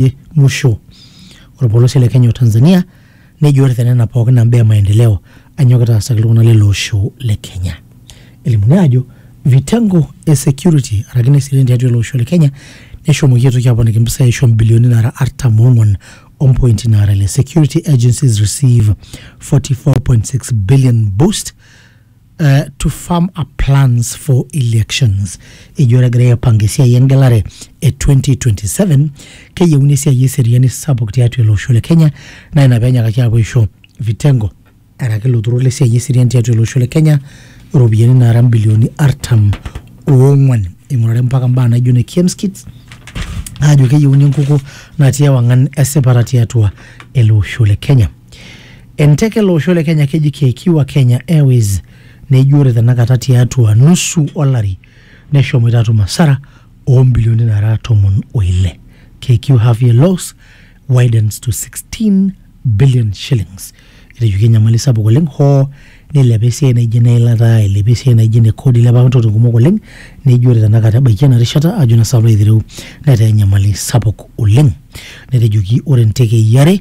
e musho olpolosie le Kenya o Tanzania nejo ore tenena pookin naa mbaa e maendeleo anyokita aasaki iltung'anak lele osho le Kenya. Elimuni aajo vitengo e security araki ineseriani tiatua ele osho le Kenya neshomoki aitoki aponiki impisai aisho mbilioni nara artam oong'wan o mpointi naara ile security agencies receive 44.6 billion boost uh, to farm up plans for elections ejo ore egirai aipanga esiai engelare e 2027 keyieuni esiai eseriani sapuk tiatua ele osho le kenya naa ina peenyakaki aapuo aisho vitengo araki ilo turur lesiai eseriani tiatua ele osho le kenya iropiyiani naara mbilioni artam oong'wan ing'urari mpaka mbaa naijo ne kemskits aajo keyieuni enkukuo natii ewang'an esipata tiatua ele osho le kenya Enteke ele osho le Kenya keji KQ wa Kenya Airways neji ore tenakata tiatua nusu olari neshomoita atum asara oo mbilioni nara tomon o ile. KQ half year loss widens to 16 billion shillings. Etejoki enyamali sapuk oleng hoo nilepa esiai naijo ene ilata, eilepa esiai naijo ene kodi, eilepa apa ntokitin kumok oleng neji ore tenakata ebaiki ena rishata ajo naa sii nanu aitereu netaa enyamali sapuk oleng. Netejoki ore ntekei are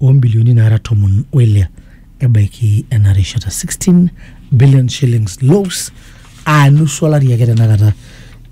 oo mbilioni naara tomon o ile ebaiki ena rishata 16 billion shillings loss aa nusu olari ake tenakata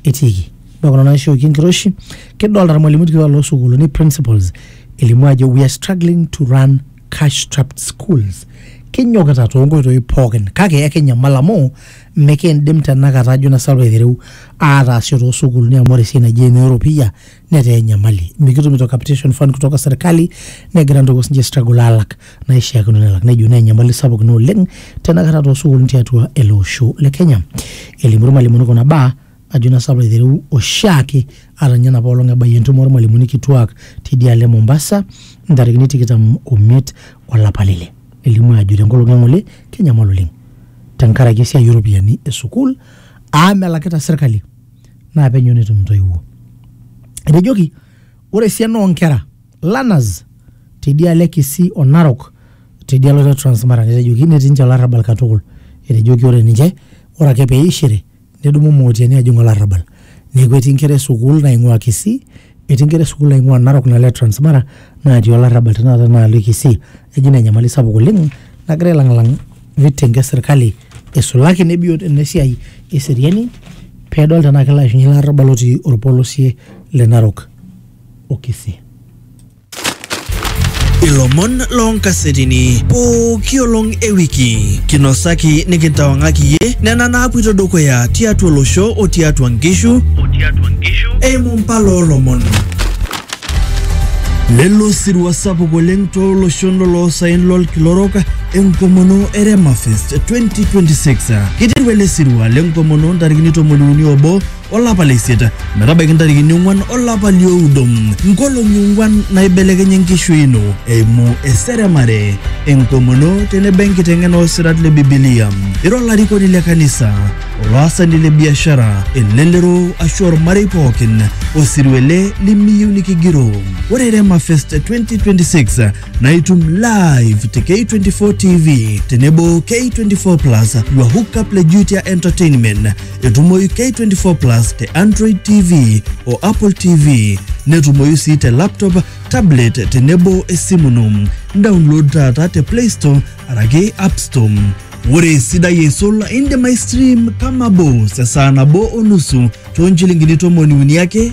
etiiki ore kuna naishooki enkiroshi kidolta irmalimuni kituak loosukuuluni principals elimu ajo we are struggling to run cash strapped schools kinyokita toonkoitoi pookin kake ekinyamal amu mikiindim tenakata ajo na salo aitereu aataasisho toosukuuluni amu ore esiai naji ene oropiyia netaa enyamali mikitumito capitation fund kutoka serkali negira ntoiwuo sinche struggle alak naishiakino nelak nejo naa enyamali sapuk ina oleng tenakata toosukulini tiatua ele osho le kenya elimu irmalimuni kuna baa ajo naa sapa aiteru oshiake ata ninye enapa olong ebayie entumo ormalimuni kituak tidialo e mombasa ntarikini tikitam omiet olapa lile nelimu ajo tenkolong eng'ole kenyamal oleng tenkaraki esiai oropiyiani e sukuul amu melakita serkali naa penyo netum intoiwuo. Etejoki ore esiana oonkera learners tedialo e Kisii o Narok tedialo te Transmara netejoki netii ninche olarrabal katukul. Etejoki ore ninche ore ake peishiri nedumu mootiani ajing olarrabal. Neeku etii inkera e sukuul naing'ua Kisii Etii nkera esukuul naing'ua Narok nalo e Transmara natii olarrabal tenakata naalo e Kisii eji ina enyamali sapuk oleng nagira ailang'lang vitengo e sirkali eisulaki ene biot ene siai eseriani pedol tenaa kelo aishunye ele arrabal otii orpolosie le Narok o Kisii. Ilomon loonkasetini pooki olong e wiki kinosaki nikintawang'aki iyie nena naapuito dukuya tiatua olosho o tiatua nkishu eimu mpala oolomon. Lelo sirua sapuk oleng tooloshon loloosaen lolkila orok enkomono e Remafest 2026. Kiteru ele sirua lenkomono ntarikini tomoniuni obo olapa le isiet metabaiki ntarikini ong'uan olapa lioudo nkolong'i ong'uan naibelekenye enkishui ino eimu eseremare enkomono tenebo enkiteng'ena oosirat le bibilia ira olarikoni le kanisa olaasani le biashara elelero ashu ormarei pookin osirua ele limiyieu nikigiroo ore rema fest 2026 naa itum live te k24 tv tenebo k24 plus your hookup le jutia entertainment Etumoyu K24 Plus te Android TV o Apple TV. Netumoyu sii te laptop, tablet tenebo esimu ino. Download taata te Play Store araki App Store. Ore esidai eisul indim aistream Kama Boss esaa nabo o nusu too nchilingini tomoni uni ake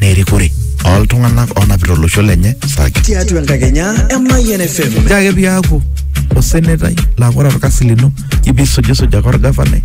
na erikore oltunganak onapita olosho lenye sake. Tiatua enkakenya e Mayian FM. Ore ake piaku osenetai laa ore orkasi lino ijo pisujusuj ake orgavanai